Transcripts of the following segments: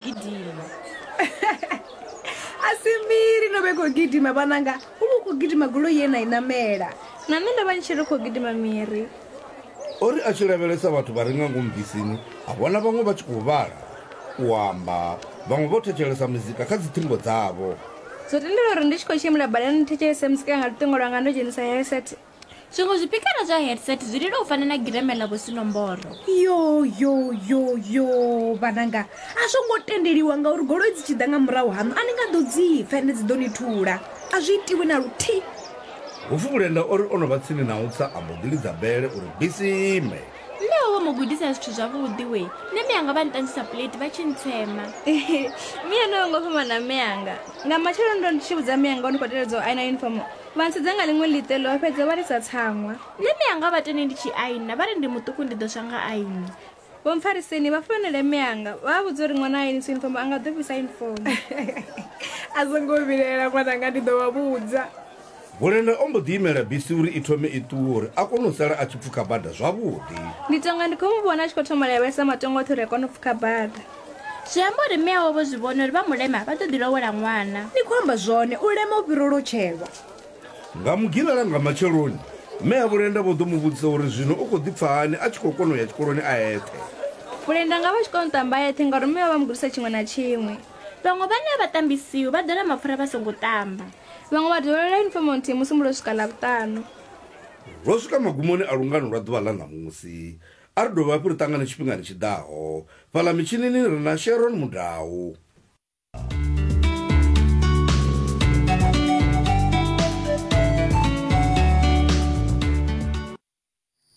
gidima a si mbili no vhe khou gidima vhananga u vha u khou gidima goloi ye na i namela na nṋe ndo vha ni tshi ri khou gidima miri o ri a tshi lavhelesa vhathu vha re nga ngomu bisini a vhona vhaṅwe vha tshi khou vhala u amba vhaṅwe vho thetshelesa muzika kha dziṱhingo dzavho zwo tendela uri ndi tshi khou tshimbila badani ni thetshelese muzika nga luṱingo lwanga ndo dzhenisa heset zwiṅwe zwipikara zwa headset zwi lila u fana na gireme ḽa vhusinomboro yo yo yo yo vhananga a zwo ngo tendeliwa ngauri goloi dzi tshi ḓa nga murahu haṋu a ni nga ḓo dzi pfa ende dzi ḓo ni thula a zwi itiwi na luthihi hupfi vhulenda o ri o no vha tsini na u tsa a mbo ḓi lidza bele uri bisi ime mme wawe mu gudisa zwithu zwavhuḓi we nṋe mme anga vha nṱanzisa plate vha tshi ntsema miya no yo ngo fhambana mme anga nga matsheloni ndo ndi tshi vhudza mme anga o ni khou teledza u aina uniform Vha ntsudza nga ḽiṅwe ḽiṱelo, vha fhedza vha lisa tsaṅwa. Nṋe mianga vha tende ndi tshi aina, vha ri ndi muṱuku ndi ḓo swa nga aini. Vho mpfariseni vha founele mme anga, vha a vhudza uri ṅwana ha ainisi yunifomo a nga ḓo fhisa yunifomo. A zwo ngo vhilaela ṅwananga, ndi ḓo vha vhudza. Bulenda o mbo ḓi imela bisi uri i thome i ṱuwe uri a kone u sala a tshi pfukha bada zwavhuḓi. Ndi tonga ndi khou mu vhona a tshi khou thoma lavhelesa matongo oṱhe uri a kone u pfukha bada. Zwi amba uri mme awe vho zwi vhona uri vha mulema vha ḓo ḓi lowela ṅwana. Ni khou amba zwone, u lema u fhira u lotshelwa. Nga Mugivhela nga matsheloni, mme a Vhulenda vho ḓo mu vhudzisa uri zwino u khou ḓi pfa hani a tshi khou kona u ya tshikoloni a eṱhe. Vhulenda nga vha tshi kona u ṱamba a eṱhe ngauri mme vha vha mu gudisa tshiṅwe na tshiṅwe. Vhaṅwe vhane a vha ṱambi siu vha ḓola mapfura vha songo ṱamba. Vhaṅwe vha dovholola yunifomo nthihi musi musi lwo swika Ḽavhuṱanu. Lwo swika magumoni a lungano lwa ḓuvha ḽa ṋamusi. A ri dovhe hafhu ri ṱangane tshifhingani tshi ḓaho. Fhaḽa mitshinini ri na Sharon Mudau.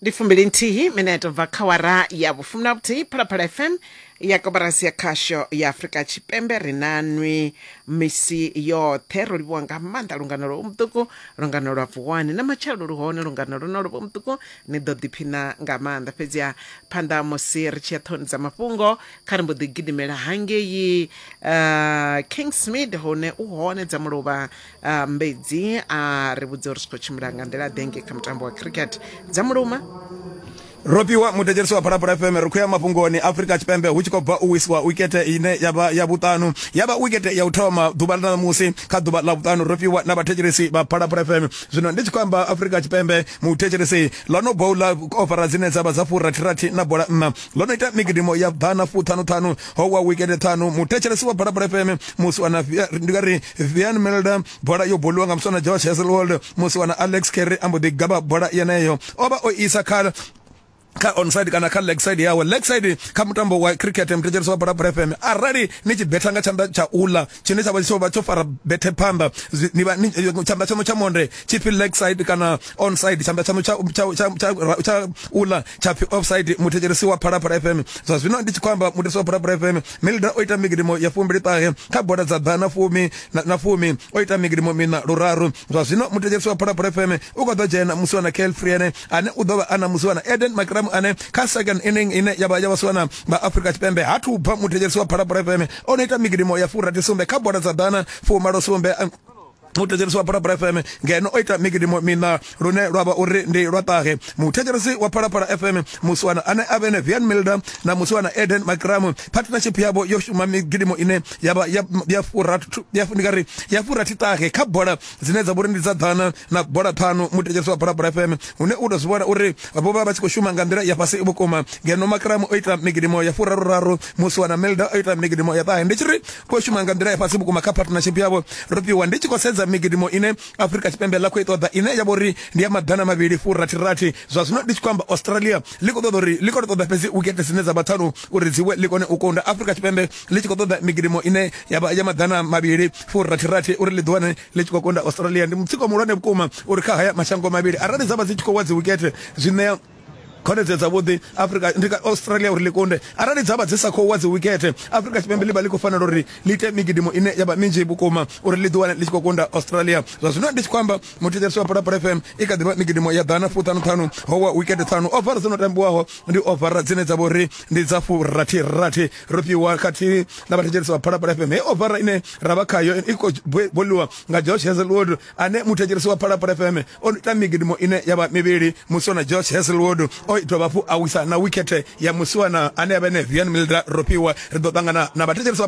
ndi fumbili nthihi mineto bva kha wara ya vhufumi na vhuthihi phalaphala fm ya koporasi ya khasho ya afurika tshipembe ri na nwi misi yoṱhe ro livhuwa nga maanḓa lungano lwo muṱuku lungano lwa vuwani na matshelo lu hone lungano lwo no lwo muṱuku Ni ḓo ḓiphina nga maanḓa. Fhedziha phanḓa ha musi ri tshi ya ṱhoni dza mafhungo, kha ri mbo ḓi gidimela hangei uh, Kingsmead hune u hone dza muluvha uh, Mbedzi a ri vhudza uri zwi khou tshimbila nga nḓila ḓe ngei kha mutambo wa cricket dza muluma Ropiwa mudedzelisi wa Phalaphala FM ri khou ya mafhungoni Afrika Tshipembe hu tshi khou bva u wisiwa wikete ine ya vha ya vhuṱanu ya vha wikete ya u thoma ḓuvha ḽa ṋamusi kha ḓuvha ḽa vhuṱanu Ropiwa na vhathetshelesi vha Phalaphala FM zwino ndi tshi khou amba afurika tshipembe muthetshelesi ḽo no boula ofara dzine dza vha dza furathirathi na bola nna ḽo no ita migidimo ya ḓana fuṱhanuṱhanu ho wa wikende ṱhanu muthetshelesi wa bola fm musi wana ndi nga ri vian melda bola yo boliwa nga muswana josh heselwold musi wana alex kerry a mbo ḓi gaba bola yeneyo o vha o isa kha kha onside kana kha leg side yawe leg side kha mutambo wa cricket mthetshelesi wa bola bola fm arali ni tshi betha nga tshanḓa tsha ula tshine tsha vha tsho vha tsho fara bethe phanḓa ni vha tshanḓa tshaṋu tsha monde tshi phi leg side kana onside tshanḓa tshaṋu tsha tsha tsha tsha ula tsha phi offside muthetshelesi wa bola bola fm zwa zwino ndi tshi khou amba muthetshelesi wa bola bola fm milda o ita migidimo ya fumbili ṱahe kha bola dza ḓana fumi na fumi o ita migidimo mina luraru zwa zwino muthetshelesi wa bola bola fm u kho ḓo dzhena musi wana kale friene ane u ḓo vha a na musiwana Eden Makramu ane kha second inning ine ya vha ya vhasiwana vha Afrika Tshipembe ha thuba muthetshelesi wa Phalaphala FM o no ita migidimo ya furathi sumbe kha bola dza ḓana fumalo sumbe muthetshelesi wa phalaphala fm ngeno o ita migidimo mina lune lwa vha uri ndi lwa ṱahe muthetshelesi wa phalaphala fm musiwana ane a vhene vian milder na musiwana eden macram partnership yavho yo shuma migidimo ine yavha ya furathi ṱahe kha bola dzine dza vhori ndi dza ḓana na bola ṱhanu muthetshesi wa bulabula fm hune u tou zwi vhona uri vho vha vha tshi khou shuma nga nḓila ya fhasi vhukuma ngeno makramu o ita migidimo ya furaruraru musi wana melda o ita migidimo ya ṱahe ndi tshi ri vho shuma nga nḓila ya fhasi vhukuma kha partnership yavho ro fhiwa ndi tshi khou sedza migidimo ine afrika tshipembe ḽa khou i ṱoḓa ine ya vho ri ndi ya maḓana mavhili furathirathi zwa zwino ndi tshi khou amba australia ḽi khou ṱoḓa uri ḽi khou ṱoḓa fhedzi wikete dzine dza vha ṱhanu uri dzi we ḽi kone u kunda afrika tshipembe ḽi tshi khou ṱoḓa migidimo ine ya vha ya maḓana mavhili furathirathi uri ḽi ḓiwane ḽi tshi khou konda australia ndi mutsiko muhulwane vhukuma uri kha haya mashango mavhili arali dza vha dzi tshi khou wa dzi wikete zwi ṋea khonedzeo dzavhuḓi afrika ndi ka australia uri ḽi kunde arali dza vha dzi sa khou wa dzi wikete afrika tshipembe ḽi vha ḽi khou fanela uri ḽi ite migidimo ine ya vha minzhi vhukuma uri ḽi ḓiwane ḽi tshi khou kunda australia zwa zwino ndi tshi khou amba muthetshelesi wa phalaphala fm i kha ḓivha migidimo ya ḓana fuṱhanuṱhanu ho wa wikete ṱhanu ovara dzo no tambiwaho ndi ovara dzine dza vha uri ndi dza furathirathi ro fhiwa khathihi na vhathetshelesi vha phalaphala fm hei ofara ine ra vha khayo i khou boliwa nga george heselwood ane muthetshelesi wa phalaphala fm o ita migidimo ine ya vha mivhili musiwana george heselwood o itwa vhafhu a wisa na wikhethe ya musiwana ane ya vha ene vian milda ro fhiwa ri ḓo ṱangana na vhathetshelesi vha